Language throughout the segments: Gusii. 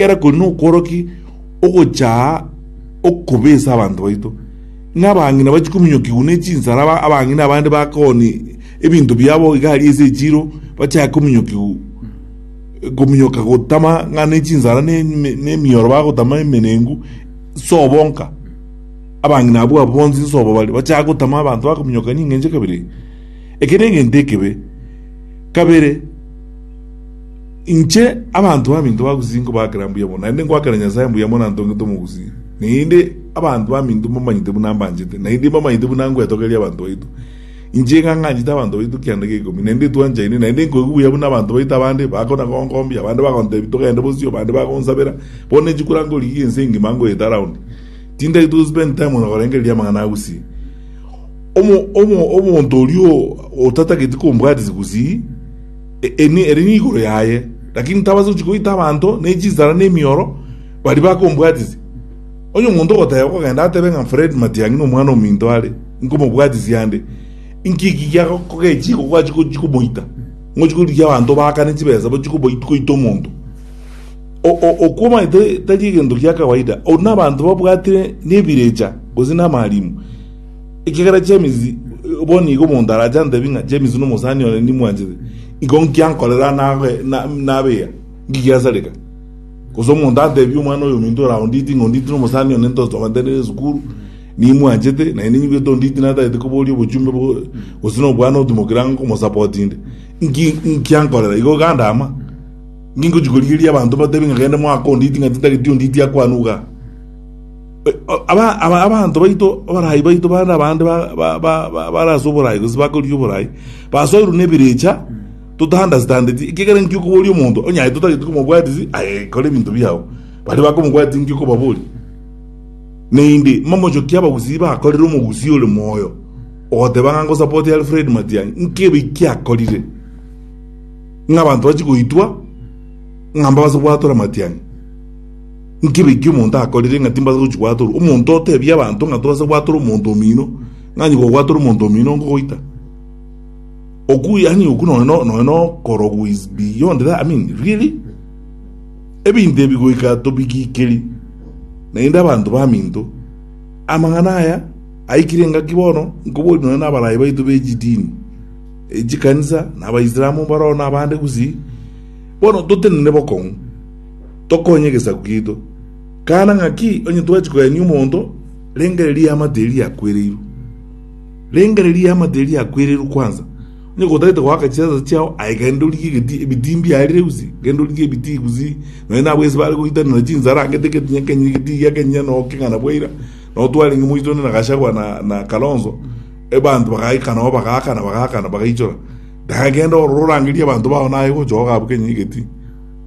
Ekero kori nokworokia ogochaa okobesa abanto baito, ng'a abang'ina bachie kominyokigwa ne chinsara, aba- abang'ina abande bakoni ebinto biabo iga aria ase echiro, bachake kominyokigwa kominyoka gotama ng'a ne chinsara ne ne- ne emioro bagotama emenengu, sobo nka. Abang'ina abwo abwo bonsi nsobo bare, bachake gotama abanto bakominyoka ning'encho kabere iga. Eke negento ekebe. Kabere. Inche abanto baminto bagusii nkobaakera mbuya mono, naende nkoakera Nyasae mbuya mono antongete omogusii, naende abanto baminto mbamanyete buna ambanchete, naende mbamanyete buna ngwetogereria abanto baito. Inche ng'ang'anchete abanto baito kianda geikomi, naende twanchaine, naende nkoigwa buya buna abanto baito abande bakona gonkombia, abande bagontebia togende bosio, abande bagonsabera. Bono inche kora nkorigia ense engima nkoyete around, tintari to spend time na korengereria amang'ana agusii. Omo omo omonto oria otatageti kombwatia chigusii, Eeni, eri nigoro yaye, lakini ntabase gochia koita abanto ne chinsara ne emioro baria bakombwatisia. Onye omonto ogoteba, okogenda atebe ng'a Fred Matiang'i nomwana ominto are, inkomobwatisia ande. Inki eki giakogechi iko gwachia gochia komoita? Ngochia korigia abanto baakane chibesa bachia koita omonto? Okwo omanyete tari egento gia kawaida. Oru nabanto babwatire nebirecha gose namarimu. Ekiagera James bonigo omonto arache antebi ng'a James nomosani one nimwanchete, igo nki ankorera nabeya? Ngigiasareka? Gose omonto antebi omwana oyominto oraonditi ng'a onditi nomosani one ntosomantenire esukuru, nimwanchete, na inde nyigwete onditi natagete koboria obochumbe gose nobwane otimokera nkomosapoti inde, nki nki ankorera? Igo ganda ama. Nki ngochi korigereria abanto batebi ng'a gende mwaka onditi ng'a titageti onditi akwanwe igaa. Aba- aba- abanto baito, abaraai baito, bande abande ba- ba- ba- ba- bare ase oboraai gose bakorigia oboraai, basoirwe nebirecha totaunderstandeti, ekiagera inki okoboria omonto onye totageti komobwatisi aye kora ebinto biao, baria bakomobwatisi inki okobaboria naende momochokie abagusii bakorire omogusii ore moyo ogoteba ng'a ngosapoti alfred matiang'i nkebe ki akorire ng'a abanto bachi goitwa ng'a mbabase gwatora matiang'i Inki ebe ekio omonto akorire ng'a timbaasa gochia gwatorwa? Omonto otebie abanto ng'a tobaasa gwatora omonto omino, ng'a onye gogwatora omonto omino nkogoita. Oku yaani oku nonya no- nonya nokorogwa is beyond that, I mean really? Ebinto ebi goika tobigikeri, naende abanto baminto. Amang'ana aya aikire engaki bono nkoboria nonya nabarayi baito be chidini, echikanisa, na abaisalamu mbaro na abande gusii, bono totenene bokong'u. tokonye egesaku giaito. Kana ng'aki onye twachia koenia omonto, rengere riamate eria riakwereirwe. Rengere riamate eria riakwereirwe kwanza. Onye gotagete goaka chiasa chiao, aye genda origie egeti, ebitii mbiarire gose, genda origie ebitii gose, nonya nabo ase bare goitanera chinsaara angete egeti nyakenyire egetii egia kenyire noo kegana bwa ira, noo twarenge moiso onde na Gachagua na, na Kalonzo, ebanto bagaika noo bagaakana bagaakana bagaichora. Dae genda ororo orangerie abanto bao naye gocha ooka abwo kenyire egetii.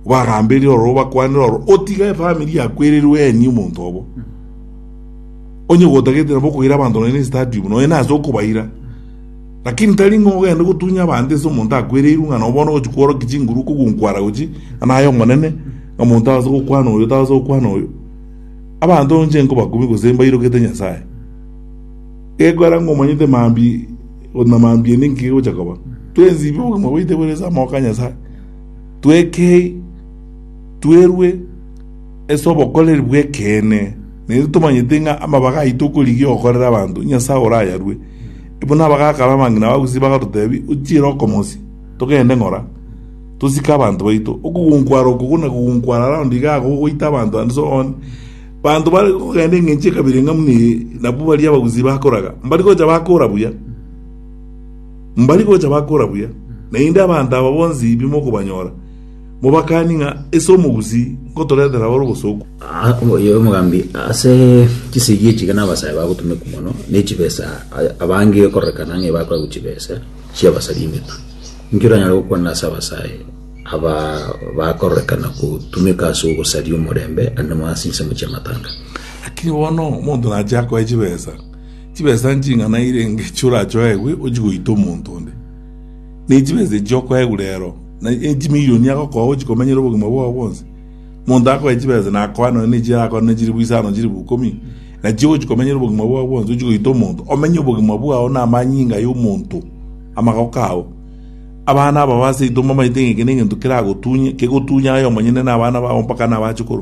Obaramberie oro, obakwanere oro, otige efamiri yakwererwe eenie omonto obo, onye gotagete nabo okoira abanto nonya n'estadium, nonya nase okobaira. Lakini tari ng'a ogende gotunya abanto ase omonto akwereirwe ng'a noo bono ogochia kworokia chinguru kogunkwara gochia ng'a naye omonene, ng'a monto aase gokwana oyo, taase gokwana oyo. Abanto nche nkobakubia gose mbairogete Nyasae. Gekogera ng'a omanyete mambia na mambia niki gegochia koba, twensi ibe obogima bwaito bore ase amaboko a Nyasae. Twekei, twerwe ase obokoreri bw'ekeene, na intwe tomanyete ng'a amabaga aito okorigia gokorera abanto, Nyasae orayarue. Buna bagakaba amang'ina bagusii bagatoteebia, Ochiire okomosia, togende ng'ora, tosike abanto baito. Okogunkwara oko buna kogunkwara round iga agwo goita abanto and so on. Banto bare kogenda eng'encho ekabira eng'amu na eye, nabwo baria abagusii bakoraga, mbari gocha bakora buya. Mbari gocha bakora buya, naende abanto aba bonsi bimokobanyora, mobakanie ng'a ase omogusii ngotoretera abare obosooku. Oyo omogambi ase chisegi echiga nabasae bagotumeka mono, ne chibesa abange ekororekana ng'a ebakora gochia chibesa chi'abasari emetwe. Inki oranyare gokwana ase abasae aba bakororekana gotumeka ase ogosaria omorembe, aande mono ase ensemo chi'amatanga? Lakini bono omonto nachia koe chibesa, Chibesa nching'ana eira engiya orachoegwe ochie goita omonto onde, ne chibesa echi okoegwa reero, na chimilioni agokoa ochie komenyera obogima bwao bwonsi? Monto akoe chibesa nakoa nonya nechi arakoa nonya chilifu isano, chilifu ikomi, na chio ochie komenyera obogima bwao bwonsi, ochie goita omonto, omenye obogima bwao na amanyinga ay'omonto, amagoko ao. Abana aba baseito mbamaete ng'a eke negento keragotunye, kegotunye aye omonyene na abana bao mpaka na abachukuru.